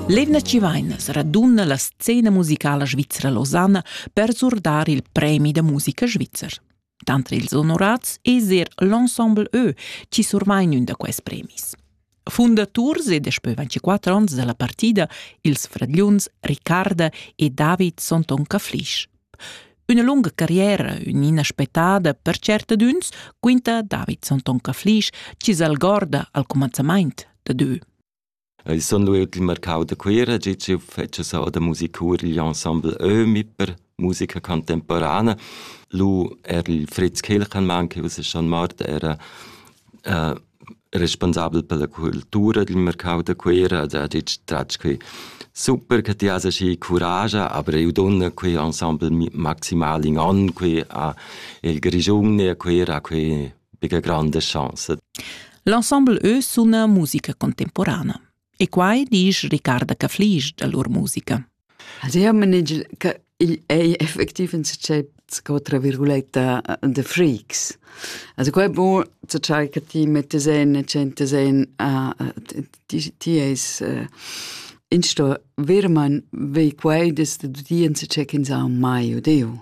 L'eivna chi vain raduna la scena musicala svizra Losanna per surdar il premi da musica svizzer. Tanter ils onorats es er l'ensemble Ö chi survain ün da quais premis. Fundaturs ed daspö 24 ons da la partida ils fragliuns Ricarda e David Sonton Caflisch Üna lunga carriera, ün'ina spettada per tschertadüns, quinta Davidson Tonka Flisch chi s'algorda al cumanzamaint da Dö. Ich son lu il mercau da Cuira, gi ci fece sau da musicur gli ensemble Ömi per musica contemporana. Lu er il Fritz Kilchenmann, che us schon mort, era uh, responsabel per la cultura dil marcau da Cuera ed ha detg tratg quei super che ti has aschi curascha, aber eu donna quei ensemble maximal in an quei a il Grischun e a Cuera quei bega grande chance. L'ensemble eu suna musica contemporana. E quai disch Ricarda Caflisch da lur musica. Also io manegel che il ei effektiv in sachet sco tra virguletta the freaks. Also qua è buon zu ciai che ti mettes en e centes en ti ti es in sto virman vei quai des de dien se check in sa mai odeu.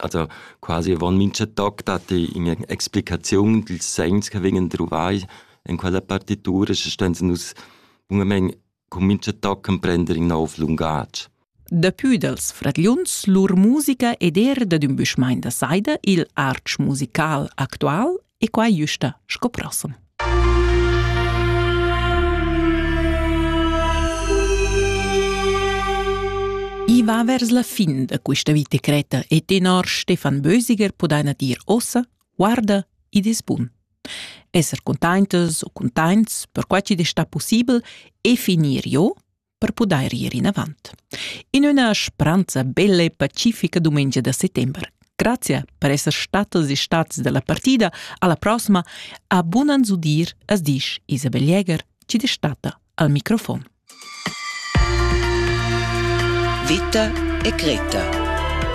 also quasi avon mincha toc datti üna explicaziun dils segns che vegnan druvai in quella partitura, sche ston nus bunamain cun mincha toc emprender in nov lungatg. Dapü dals fragliuns lur musica ed er dad ün büschmain da saida, il artsch musical actual, e quai güsta sco prossem. I va vers la fin da questa vita creta e tenor Stefan Bösiger pudaina dir ossa, guarda ed es bun. Esser containtas o containts, per quai chi'd es sta pussibel, e finir jo, per pudair ir inavant. In üna spranza bella e pacifica dumengia da settember. Grazie per esser statas e stats dalla partida alla prossima a bunan zudir as disch Isabel Jäger, ci destata al microfon. Vita e Greta